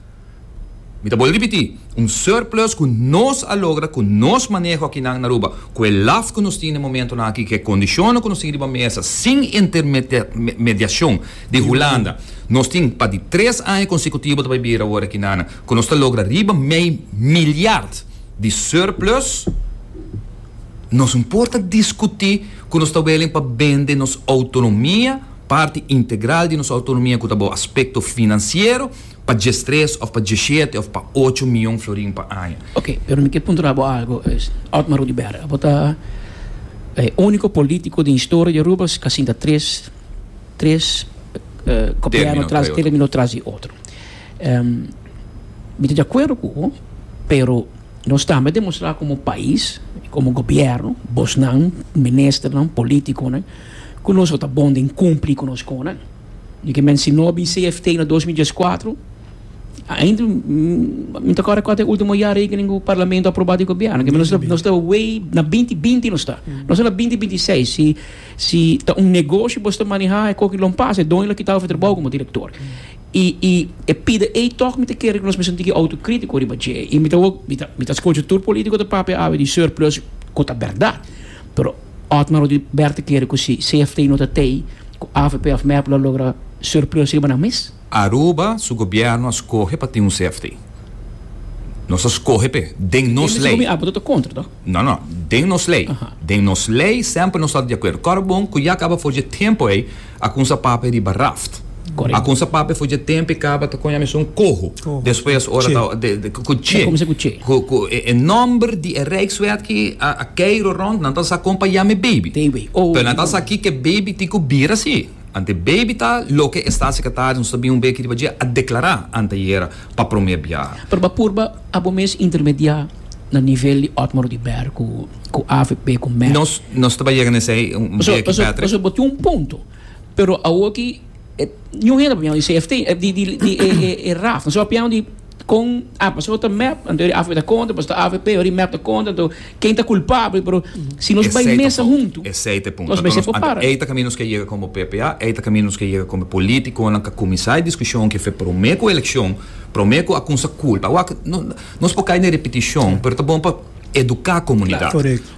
Mi ta boli ripití, un surplus ku nos a logra ku nos maneho akinan na Aruba, ku e laf ku nos tin den momentonan aki, ku e kondishonnan ku nos tin riba mesa sin intermediashon di Hulanda. Nos tin pa di tres aña konsekutivo ta bai bira awor akinan ku nos ta logra riba mei milyard di surplus. Nos no por ta diskutí ku nos ta wèlen pa bende nos outonomia, parti integral di nos outonomia ku ta bou aspekto finansiero, Pa djestres of pa djeshete of pa ocho mion florin pa aña. Ok, pero mi ke puntra bo algo, Otmar Rudiberg, abo ta e uniko politiko den historia di Aruba si ka sinta tres tres gobièrnu tras término tras di otro. Mi ta di akuerdo ku bo, pero nos tambe demostrá komo pais, komo gobièrnu, bosnan, ministernan, politikonan, ku nos lo ta bon den kumpli ku nos konan. Mi ke mensinó bi CFT na dos mil dieskuater. Ainda mi ta kòrda kua ta e último jarekening ku parlamento a aprobá di gobièrnu. Ke nos ta nos ta wey na binti binti nos ta. Nos ta na binti binti i seis. Si si ta un negoshi boso ta manehá e koki lon pas e doño lo kitá boso trabou komo direktor. I i e pida ei tòg mi ta kere ku nos mi sinti ki outokritiko riba dje. I mi ta wou mi ta mi ta skocha tur polítiko ta papia awe di surplus ku ta bèrdat. Pero Otmar Odio Bert a kere ku si CFT no ta tei ku avp òf mep lo logra surplus riba nan mes. Aruba su gobièrnu a skohe pa tin un CFT. Nos a skohe p'e. Den nos lei. Abo ta kontra to? No, no. Den nos lei. Den nos lei semper nos tabata di akuerdo. Kòrda bon ku ya kaba for dje tempu ei A kunsa papia riba raft. Correcto. A kunsa papia for dje tempo e caba ta con yamesun coho. Coho. Despues ora ta Che. de cu cu che. Ta comensa cu che. Cu cu e e nomber di e Rijkswet ki a a kei roront nan ta sa con pa yame baby. Baby. Oh. Pero nan ta sa ki ke baby tin cu bira si. Anto baby ta loke e Staatssecretaris nos ta bin un bey aki riba dje a declara anteayera pa prome biaha. Pero ba purba abo mes intermedia na nivel di Otmar Oduber cu. cu avp cu mec. Nos nos ta bay yega na esey un Paso beki paso Patrick. paso bo tin un punto pero awo aki e niun hende a piensa di CFT eh di di di e e e raf so a piensa di con ah paso ta mep anto yori avp ta conta paso ta avp yori mep ta conta anto ken ta culpabel pero si nos bay Esey ta mesa fout hunto esey ta e punto nos anto mester nos anto papara. ey ta caminda nos ke yega como ppa ey ta caminda nos ke yega como politiconan ca cuminsa e discusion aki fe prome cu eleccion prome cu a cuminsa culpa awor aki no nos por cay na e repeticion pero ta bon pa eduká komunidat.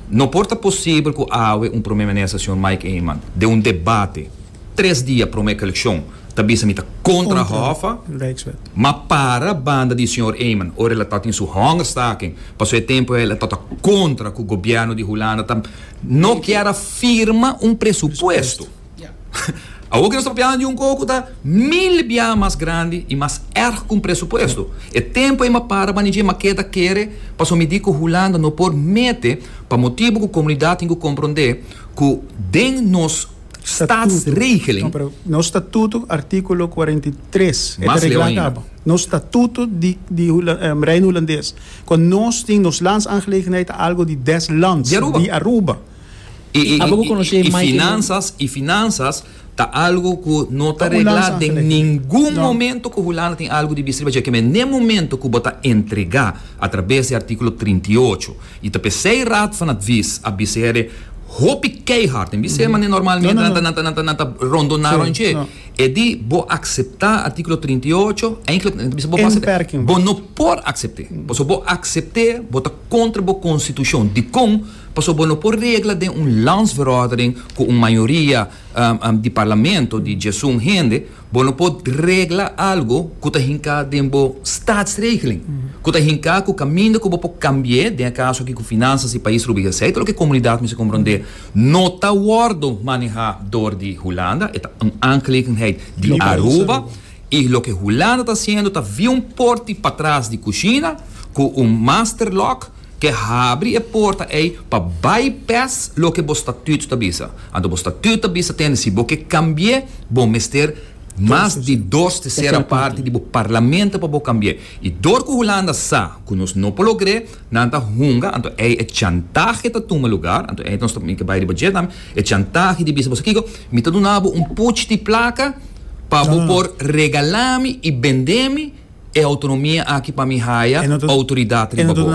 No por ta posibel ku awe un Prome Minister señor Mike Eman den un debate tres dia promé ku elekshon ta bisa mi ta kontra Hoffa, ma para banda di señor Eman ora el a tabata den su hongerstaking pasobra e tempu el a tabata kontra ku gobièrnu di Hulanda ta no kier a firma un presupuesto. Awor ki nos ta papia handi un koko ta mil biaha mas grandi i mas erg ku un presupuesto. E tempu ei m'a para manija i m'a keda kere paso mi di ku Hulanda no por mete pa motibu ku komunidat tin ku komprondé ku den nos Statsregeling, Nos statuto, artíkulo kuarenta i tres, e ta reglá ta abo. Nos statuto di di Reino Hulandes, ku nos tin nos Landsaangelegenheid ta algo di des Lands di Aruba. I finansas, i finansas ta algu ku no ta regla den ningun momentu ku Hulanda tin algu di bis'riba dje. Keme n'e momentu ku bo ta entregá atrabes di artíkulo trinta i ocho. I ta p'esei Raad van Advies a bis'er hopi keihard, en bis'er manera normalmente nan ta nan ta rondoná rònt dje, e di bo akseptá artíkulo trinta i ocho, eindelijk nan ta bisa bo base di bo no por aksept'é. Pasobra bo aksept'é bo ta kontra bo konstitushon. Dikon? Paso bo no por regla den un landsverordening cu un mayoria di parlamento di djesun hende, bo no por regla algo cu ta hinca den bo statsregeling, cu ta hinca cu caminda cu bo por cambi'e, den e caso aki cu finanzas di pais Rubia Hesey, ta lo cu e comunidad mester compronde, no ta wordo maneha door di Hulanda, e ta un aangelegenheid di Aruba, y loke Hulanda ta haciendo ta via un porti patras di cushina cu un master lock, Ke habri e porta ei pa bypass loke bo statüt ta bisa. Anto bo statüt ta bisa tende si bo ke kambié bo mester mas di dos tesera parti di bo parlamento pa bo kambié. I dor ku Hulanda sa ku nos no por logr'é, nan ta hunga, anto ei e chantahe ta tuma lugar, anto ei nos ta tin ke bai di bo dje tambe, e chantahe di bisa bo sa kiko, mi ta duna bo un puch di plaka pa bo por regala mi i bendé mi, E autonomia aki pa mi haya autoridad riba bo.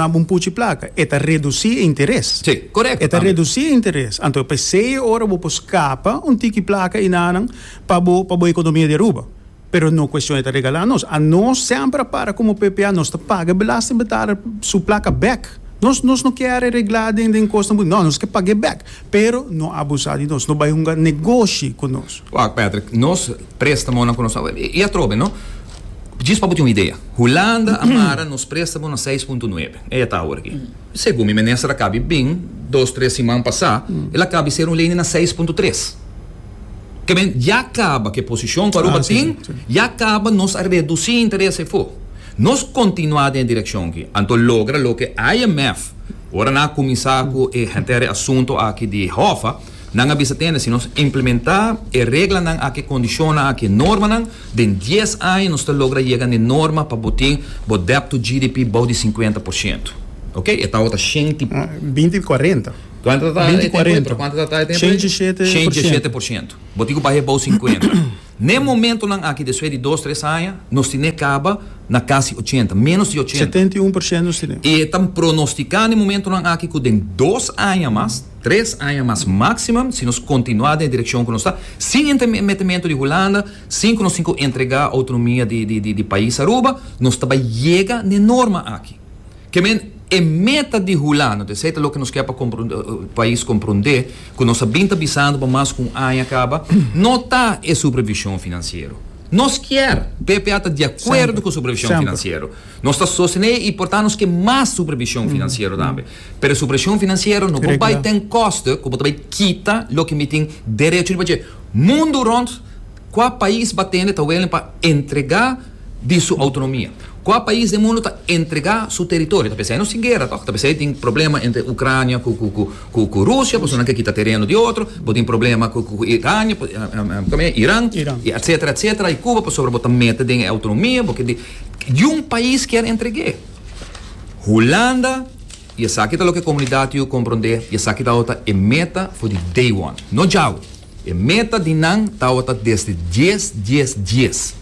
E ta reduci e interes. Si, correcto tambe. E ta reduci e interes. Anto p'esey e ora bo por scapa un tiki placa enanan pa bo pa bo economia di Aruba. Pero no cuestion e ta regala nos. A nos semper a para como ppa nos ta paga e belastingbetaler su placa bek. Nos nos no kere regla den den cos nan. No, nos ke pag'e bek. Pero no abusa di nos. No bay hunga negoshi cu nos. Wacht Patrick, nos Prestamonan ku nos a wak. I atrobe, no? Djis pa bo tin un idea. Hulanda a mara nos prestamo na seis punto nuebe. E e ta awor aki. Segun mi minister a kabi bin dos tres siman pasá, el a kabi ser un lei ni na seis punto tres. Ke men, ya kaba ke posishon ku Aruba tin, ya kaba nos a redusí interes efo. Nos kontinuá den e direkshon aki. Anto logra loke IMF, ora nan a kuminsá ku e henter e asunto aki di hòf a, Nan a bisa tende si nos implementá e reglanan akí, kondishonnan akí, e normanan, den dies aña nos ta logra yega n'e norma pa bo tin bo debt to GDP bou di sinkuenta por siento. Oke, e tau ta shenti. Binti di kuarenta. Kuantu ta ta e tempu ei, pero kuantu ta ta e tempu ei? Shenti shete por siento. Shenti shete por siento. Bo tin ku baha e bou sinkuenta. N'e momentonan aki despues di dos tres aña nos tin'é caba na casi ochenta, menos di ochenta. Setenta i un por ciento nos tin'é. Y e ta pronostica n'e momentonan aki cu den dos aña mas, tres aña mas maximum, si nos continua den e direccion cu nos ta, sin entrmetimento di Hulanda, sin cu nos tin cu entrega autonomia di di di pais Aruba, nos ta bay yega n'e norma aki. Ke men e meta di hulando, esei ta loke nos kier pa pais komprondé ku nos a bin ta bisando pa mas ku un aña kaba, no ta e supervishon finansiero. Nos kier, BPA ta di akuerdo ku supervishon finansiero. Nos ta sostené i por ta nos ke mas supervishon finansiero tambe. Pero e supervishon finansiero no por bai den koste ku bo ta bai kita loke mi tin derecho di pach'é mundu rònt. Kua pais ba tende ta welen pa entrega di su autonomia? Kua pais den mundu ta entrega su teritorio? Ta pensa esei no sin guera tok? Ta pensa esei tin problema entre Ucrania ku Rusia pasobra nan ke kita tereno di otro, bo tin problema ku Irania, Iran, etsetera etsetera i Cuba pasobra bo ta mete den e autonomia, bo ke di Yun pais kier entreg'é. Hulanda i esaki ta loke komunidat yu kompronde i esaki ta e meta for di day one, no djau. E meta di nan tawata desde dies, dies, dies.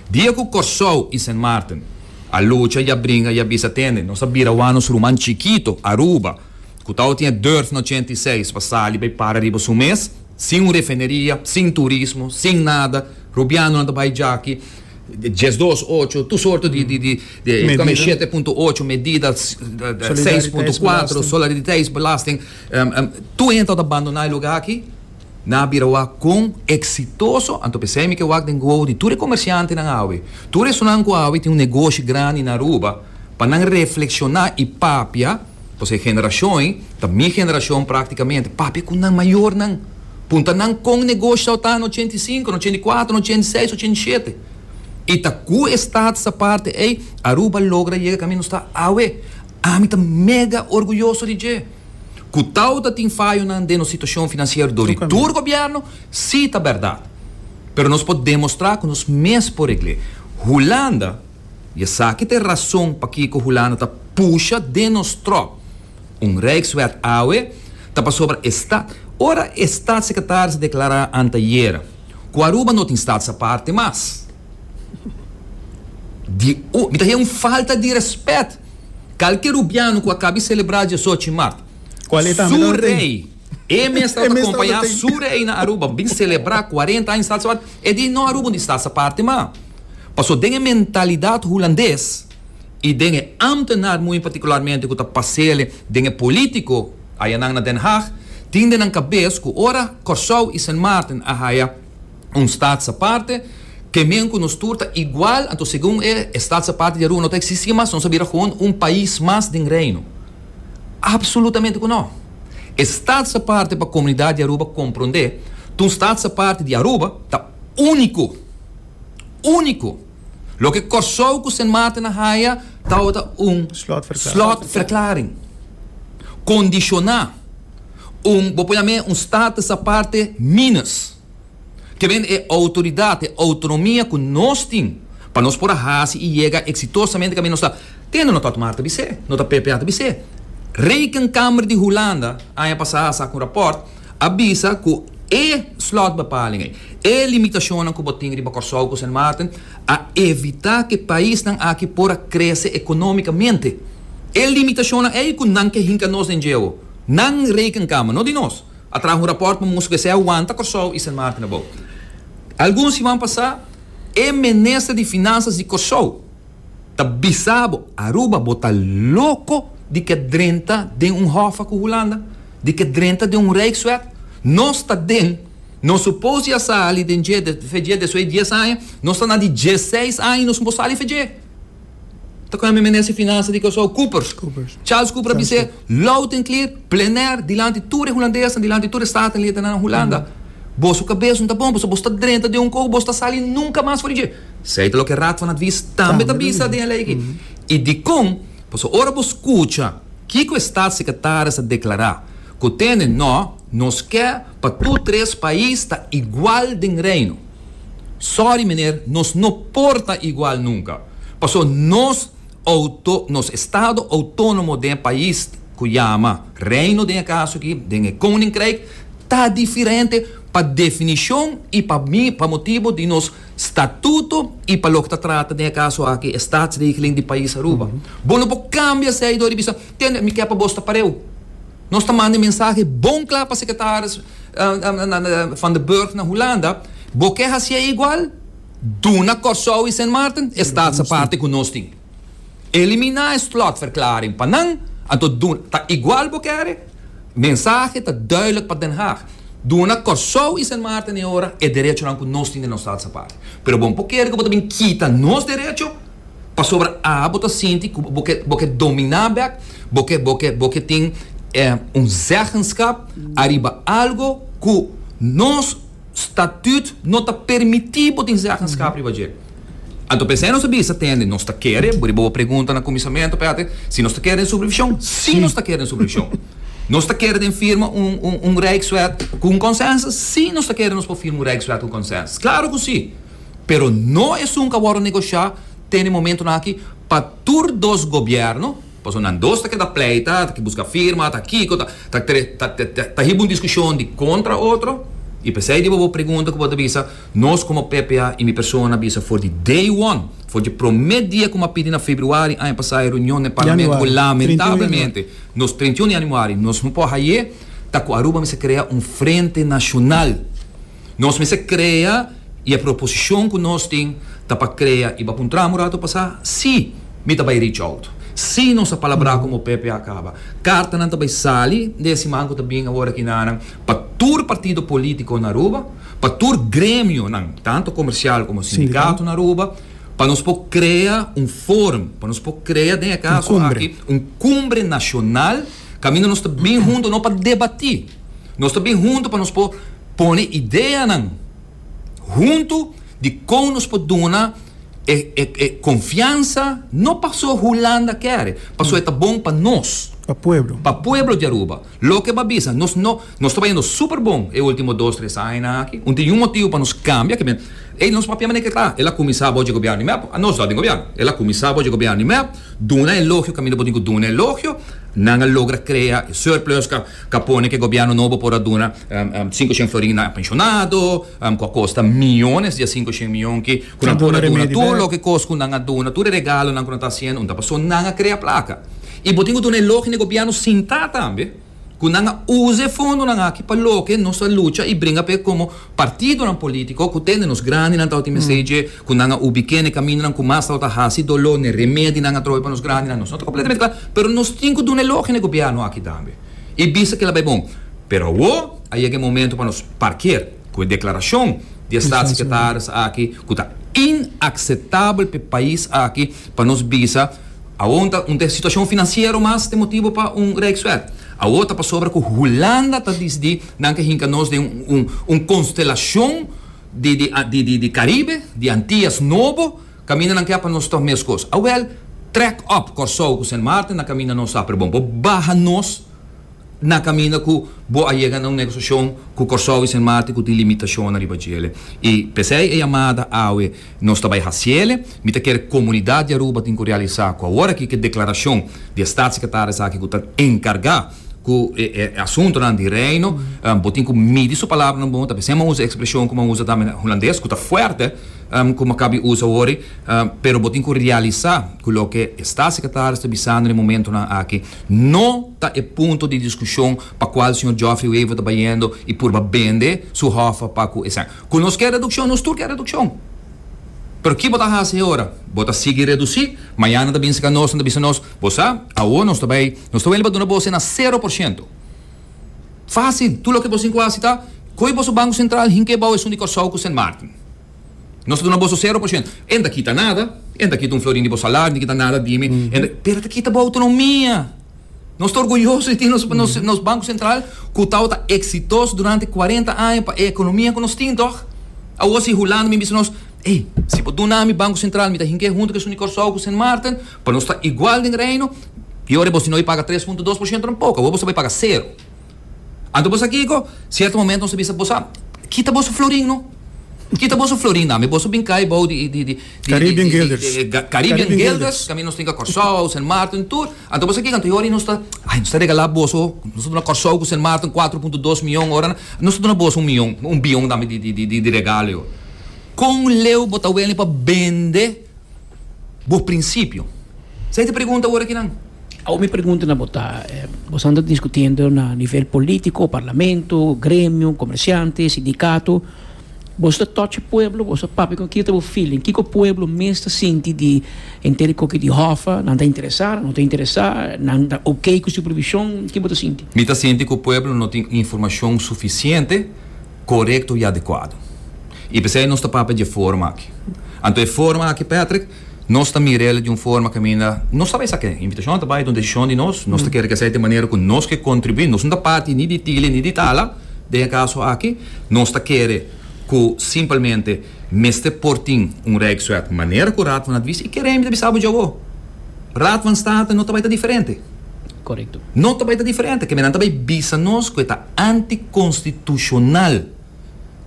Dia ku Kòrsou i Sint Maarten a lucha i a bringa i a bisa tende, nos a bira wak nos ruman chikito, Aruba, ku tawa tin e durf na ochenta i seis pa sali bai para riba su mes, sin un refineria, sin turismo, sin nada, rubianonan ta bai djaki, dies dos ocho, tur sorto di di di, shete punto ocho medida, seis punto kuater, solidariteitsbelasting. Tur hende lo ta bandoná e lugá akí. Nan a bira wak kon eksitoso. Anto p'esei mi ke wak den gowo di tur e komersiantenan awe. Tur esunnan ku awe tin un negoshi grandi na Aruba, pa nan reflekshoná i papia, pasobra e generashon ei ta mi generashon praktikamente, papia ku nan mayornan. Punta nan kon negoshi sa ta na ochenta i sinku, na ochenta i kuatro, na ochenta i seis, ochenta i shete. I ta ku e stat sa parti ei Aruba logra yega kaminda nos ta awe. Ami ta mega orguyoso di dje. Ku tau ta tin fayonan den nos situashon finansiero dor di tur gobièrnu? Sí ta bèrdat. Pero nos por demostrá ku nos mes por regl'é. Hulanda, i esaki ta e rason pakiko Hulanda ta pusha den nos tròp un Rijkswet awe, ta pasobra e stat. Ora e statsecretaris a deklará anteayera ku Aruba no tin statsaparte mas. di u. Mi ta haya un falta di respet. Kalke rubiano ku a kabi selebrá diesochi mart. Su rei, e mes tawata kompañá su rei na Aruba. Bin selebrá kuarenta aña Stad Sabadell. E di no Aruba un di Stad Aparte ma. Paso den e mentalidat Hulandes i den e ámtenar muy partikularmente ku ta pasele den e polítiko ayanan na Den Haag tin den nan kabes ku ora Kòrsou i Sint Maarten a haya un stats aparte, kemen ku nos tur ta igual, anto segun e, e stats aparte di Aruba no ta eksistí mas, nos a bira gewoon un pais mas den Reino. Apsolutamente ku no! E stats aparte pa komunidat di Aruba komprondé ta un stats aparte di Aruba, ta úniko! Úniko! Loke Kòrsou ku Sint Maarten a haya tabata un slotverklaring kondishoná, un, bo pone amé, un status aparte minus. Ke ven e outoridat, e outronomia ku nos tin pa nos por a hasi i yega eksitosamente kaminda nos ta tende no tòt mar ta bis'é, no ta ppa ta bis'é. Rekenkamer di Hulanda aña pasá a saka un rapòrt a bisa ku e slotbepaling ei, e limitashonnan ku bo tin riba Kòrsou ku Sint Maarten a evitá ku e paisnan aki por a krese ekonómikamente. E limitashonnan ei ku nan ke hinka nos den djeu. Nan Rekenkamer, no di nos. A traha un rapòrt pa mustra ku esei a wanta Kòrsou i Sint Maarten abou. Algun siman pasá e minister di Finanzas di Kòrsou ta bisa bo, Aruba bo ta loko di ke drenta den un hòfa ku Hulanda, di ke drenta den un rijkswet. Nos ta den, nos supos di a sali den dje, feje desuei di dies aña, nos ta na di djeseis aña i nos no por sali feje. ta kòmbi Minister di Finansa di Kòrsou, Coopers. Charles Cooper a bis'é loud and clear, plenair, dilanti tur e hulandesnan, dilanti tur e Staten-Ledenanan Hulanda, Boso kabes no ta bon, pasobra bos ta drenta den un koho, bos ta sali nunka mas for di dje. Esei ta loke Raad van Advies tambe ta bisa den e lei aki. I dikon? Pasobra ora bo skucha kiko e Statssekretaris a deklará, ku tene nò, nos ke pa tur tres pais ta igual den Reino. Sorry meneer, nos no por ta igual nunca. Paso nos auto, nos estado autonomo den e pais cu yama Reino den e caso aki, den e Koninkrijk, ta diferente pa definicion y pa mi, pa motibo di nos statuto y pa loke ta trata den e caso aki e Statsregeling di pais Aruba. Bo no por cambia esey door di bisa, tende, mi ke pa bos ta pareu. Nos ta manda e mensahe bon kla pa sekretaris Van den Burg na Hulanda, Bo ke hasié e igual? Duna Kòrsou i Sint Maarten e staatsaparte ku nos tin. Eliminá e slotverklaring pa nan, anto duna, ta igual bo kere? Mensahe ta duidelik pa Den Haag, Duna Kòrsou i Sint Maarten e ora e derechonan ku nos tin den nos staatsaparte. Pero bo no por kere ku bo ta bin kita nos derecho. pasobra awe bo ta sinti ku bo ke dominá bèk, bo ke bo ke bo ke tin un zeggenskap ariba algu ku nos statüt no ta permití bo tin zeggenskap riba dje. Anto p'esei nos ta bisa tende nos ta kere, riba bo pregunta na kuminsamentu Peter, si nos ta kere den supervishon? Sí nos ta kere den supervishon. Nos ta kere den firma un un un rijkswet ku un konsensus? Sí nos ta kere nos por firma un rijkswet ku konsensus. Klaru ku sí! pero no esun a wòrdu negoshiá te na e momentunan aki pa tur dos gobièrnu, pasobra nan dos ta keda pleita, ta ke buska firma, ta kiko, ta ta tre ta ta ta hiba un diskushon di kontra otro, i p'esei di bobo pregunta ku bo ta bisa, nos komo PPA i mi persona a bisa for di day one, for dje promé dia ku mi a pidi na februari aña pasá e reunion na e parlamento ku lamentablemente nos treintiuno yanuari nos no por haye, ta ku Aruba mester krea un frente nashonal. Nos mester crea y e proposicion cu nos tin ta pa crea y bacuntra amu rato pasa si mi ta bay reach out, si nos ta palabra como Pepe a caba. Cartanan ta bay sali den e siman cu ta bini awor aki nanan pa tur partido politico na Aruba, pa tur gremionan tanto comercial como sindicato na Aruba pa nos por crea un forum, pa nos por crea den e caso aki un cumbre nacional. Kaminda nos ta bin huntu no pa debatí. Nos ta bin huntu pa nos por pone ideanan huntu di kon nos por duna e e konfiansa, no paso Hulanda kere, paso e ta bon pa nos. Pa pueblo. Pa pueblo di Aruba. Loke bo a bisa, nos no. Nos ta bayando super bon e ultimo dos tres añanan aki. Un tin yu motibu pa nos cambia ke men ey nos papia manera ke ta. El a cuminsa abo dje gobierno di mep, a nos dor den gobierno. El a cuminsa abo dje gobierno di mep, duna elogio caminda bo tin cu duna elogio. Nan a logra crea e surplus ca ca pone ke gobierno nobo por a duna cinco shen florin na pensionado cu a costa miyones di a cinco shen miyon ki cu nan por a duna tur loke cos cu nan a duna, tur e regalonan cu nan ta haciendo, un ta paso nan a crea placa. Y bo tin cu duna elogio na e gobierno sinta tambe. cu nan a uza e fondonan aki pa loke nos ta lucha y bringa p'e como partidonan politico cu tende nos grandinan tabata mester dje cu nan a ubiqu'e n'e camindonan cu mas tabata haci dolo, n'e remedi nan a trobe pa nos grandinan, nos no ta completamente cla pero nos tin cu duna elogie n'e gobierno aki tambe y bisa kela bay bon. Pero awo a yega e momento pa nos parkier cu e declaracion di e Staatssecretaris aki cu ta inacceptabel p'e pais aki pa nos bisa Awo un ta un te situacion financiero mas te motibo pa un rijkswet. Awo ta pasobra cu Hulanda ta disdi nan ke hinca nos den un un constelacion di di di di di Caribe, di Antillas Nobo, caminda nan ke pa nos ta mescos. Awel, trek op Corsou cu Sint Maarten na caminda nos ta apre bon. Bo baha nos. na caminda cu bo a yega na un negociacion cu Corsou y Sint Maarten cu tin limitacionnan riba djele. Y pesey e yamada awe nos ta bay haciele, mi ta kere comunidad di Aruba tin cu realisa cu awor aki cu e declaracion di e Staatssecretaris aki cu ta encarga cu e asuntonan di Reino, bo tin cu midi su palabranan bon, ta pesey m'an usa e expresion cu m'an usa tambe na Hulandes, cu ta fuerte, como acabi usa awori, pero bo tin cu realisa cu loke esta secretaris ta bisando na e momentonan aki no ta e punto di discusion pa cual señor Geoffrey Wever ta bayendo y purba bende su hofa pa cu esaki. Cu nos kier reduccion, nos tur kier reduccion. Pero ki bo ta haci heora? Bo ta sigui reduci, mañana ta binse ca nos en ta bisa nos, bo sa, awo nos ta bay, nos ta wende pa duna bo asina cero por ciento. Fásil! Tur loke boso tin ku hasi ta koi boso Banku Sentral hink'é bou esun di Kòrsou ku Sint Maarten. Nos ta duna boso sero por shent. E no ta kita nada, e no ta kita un florin di bo salari, no ta kita nada di mi, pero e ta kita bo outonomia. Nos ta orguyoso di tin nos nos Banku Sentral ku tabata eksitoso durante kuarenta aña pa e ekonomia ku nos tin, tòg? Awor si Hulanda bin bisa nos, Ey, si bo duna mi Banku Sentral, mi ta hink'é huntu ku esun di Kòrsou ku Sint Maarten, Pa nos ta igual den Reino, Yo ora bo si no bai paga tres punto dos por shento nan poco, awor boso bai paga sero. Anto bosa kiko? Sierto momento nos a bisa, Bosa kita boso florin no. Kita boso florin dame, boso bin kai bou di di di Caribbean Guilders di di Caribbean Guilders, caminda nos tin ka Corsou, Sint Maarten tur. Anto bosa kiko? Anto yo ora nos ta, ay nos ta regala boso, nos ta duna Corsou ku Sint Maarten cuatro punto dos mion ora nan, nos ta duna boso un mion, un bion dame di di di di regalo yo. Kon leu bo ta wene pa bende? Bo prinsipio? Esei ta pregunta ora kinan? Awor mi pregunta na bo ta, boso anda diskutiendo na nivel politico, parlamento, gremio, comerciante, sindicato, boso ta tochi pueblo, boso ta papia con kiko ta bo feeling, kiko pueblo mes ta sinti di henter di koki di Hoffa, nan ta interesa, nan no ta interesa, nan ta ok cu su provision, ki bo ta sinti? Mi ta sinti cu pueblo no tin informacion suficiente. korekto i adekuado. I p'esei nos ta papia di e forma aki. Anto e forma aki, Patrick, nos ta mira el di un forma kaminda nos ta bai sa ke invitashon ta bai, ta un desishon di nos, nos ta kere ke esei ta e manera ku nos ke kontribuí. Nos no ta parti ni di Tili ni di Tala den e kaso aki. Nos ta kere ku simpelmente mester por tin un rijkswet manera ku Raad van Advies. I kere mi ta bisa bo dje awo, Raad van State no ta bai ta diferente. Korekto. No ta bai ta diferente. Kemendan ta bai bisa nos ku e ta. anticonstitucional.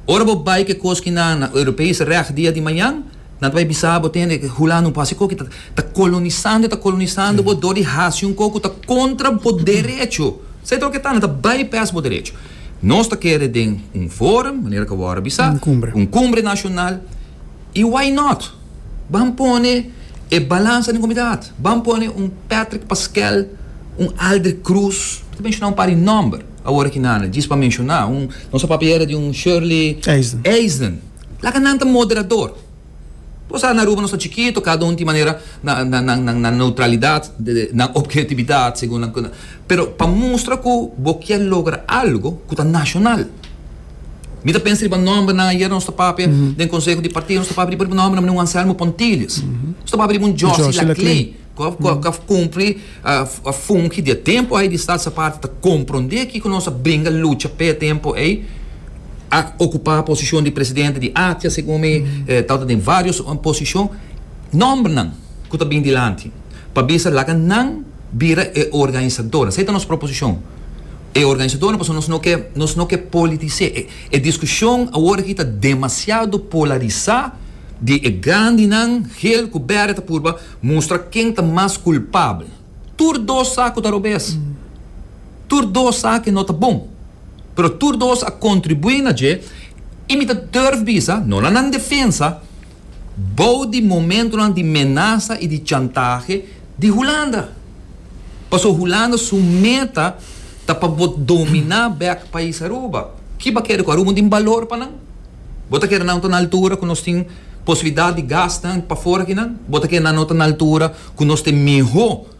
Ora bo bay cu e cos ki na na Europees recht dia di mañan, nan ta bay bisa bo tene cu hula no por haci coki, ta ta colonisando y ta colonisando bo door di haci un cos cu ta contra bo derecho. Sa y ta lo cu ta, nan ta bypass bo derecho. Nos ta kere den un forum, manera cu awor a bisa, un cumbre nacional, Y why not? Ban pone e balansa den comidat. Ban pone un Patrick Pasquel, un Aldrick Cruz. Ta menciona un par di nomber awor aki nada, djis pa menciona. Un, nos a papia era di un Shirley Eisden. Laga nan ta moderador. Bo sa, na Aruba nos ta chikito, cada un tin manera nan neutralidad, nan objetividad, segun nan. Pero pa mustra cu bo kier logra algo cu ta nacional. Mi ta pensa riba nòmbernan, ayer nos ta papia den konseho di partido, nos ta papia riba riba nòmbernan, meneer Juan Anselmo Pontilius, nos ta papia riba un Josy Laclay, ku a kumpli, a fungi di a tempu ei di Staat sa parti, ta komprondé kiko nos a bringa lucha p'e tempu ei, a okupá posishon di presidente di Atia segun mi, tabata den vários posishon, nòmbernan ku ta bin dilanti pa bisa laga nan bira e organisadornan, esei ta nos proposishon. E organisadornan pasobra nos no ke nos no ke politis'é. E diskushon awor aki ta demasiado polarisá di e grandinan Geel ku Bède ta purba mustra ken ta mas kulpabel. Tur dos sa ku ta robes. Tur dos sa ke no ta bon. Pero tur dos a kontribuí na dje i mi ta durf bisa, no na nan defensa, bou di momentonan di menasa i di chantahe di Hulanda. Paso Hulanda su meta ta pa bo dominá bèk pais Aruba. Ki bo ta kere ku Aruba no tin balor pa nan? Bo ta kere nan ta na altura ku nos tin posibilidat di gasnan pafora akinan? Bo ta kere nan no ta na altura ku nos ta mihó?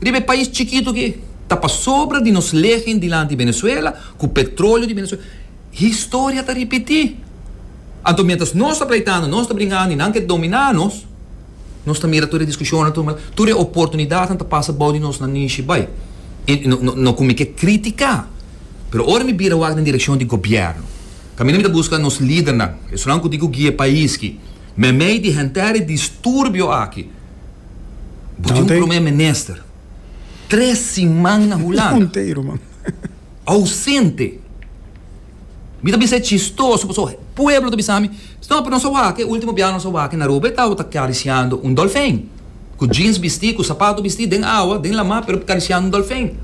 Riba e pais chikitu ki ta pasobra di nos legen dilanti Venezuela ku petrolio di Venezuela. Historia ta ripití. Anto miéntras nos ta pleitando, nos ta bringando i nan ke dominá nos, nos ta mira tur e diskushonnan, tur maldad, tur e oportunidatnan ta pasa bou di nos nanishi bai. I no ku mi ke kritiká, pero ora mi bira wak den direkshon di gobièrnu, kaminda mi ta buska nos lidernan, esunnan ku tin ku guia e pais ki meimei di henter e disturbio aki. Bo tin un Nante. promé minister tres siman na Hulanda. Mundo inteiro, man. Ausente. Mi ta bisa e chistoso paso pueblo ta bisa mi, No, pero nos a wak, e ultimo biaha nos a wak na Aruba e tabata karisiando un dolfin. Ku jeans bisti, ku sapato bisti den awa, den lama, pero karisiando un dolfin.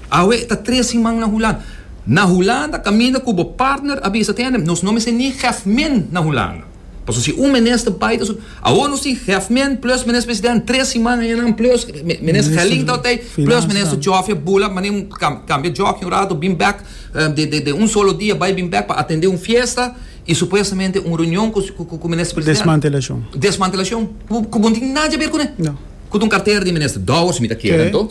Awe e ta tres siman na Hulanda. Na Hulanda kaminda ku bo partner a bisa, Tienem, nos no mester ni gèf min na Hulanda. Paso si un minister bai ta su Awor nos tin Hefmin plus minister president tres siman aña nan plus minister Gelling ta otei plus minister Jofia Bula mane cambia jockey un rato bin bek den un solo dia bai bin bek pa atende un fiesta y supuestamente un reunion cu minister president desmantelacion cu bo no tin nada haber cune cu ta un cartera di minister Dowers mi ta kere anto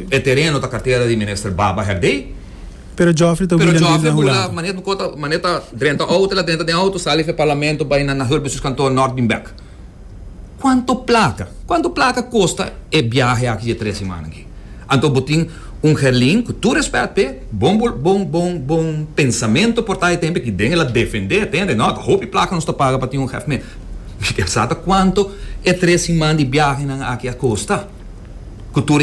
e tereno ta cartera di minister Baba Herdey. Pero Geoffrey ta hula live na hula anto. Manet bukot a manet a drenta auto el a drenta den auto sali for e parlamento bai na Nahur Business Kantoor Nort bin bek. Kuanto plaka kuanto plaka kosta e biahe aki di e tres simana aki. Anto bo tin un Herlin ku tur respèt p'e bon bon bon bon pensamento por ta e tempo aki den el a defende e tende nòt hopi plaka nos ta paga pa tin un hèf mea mi kier sa ta kuanto e tres siman di biahenan aki a kosta ku tur e.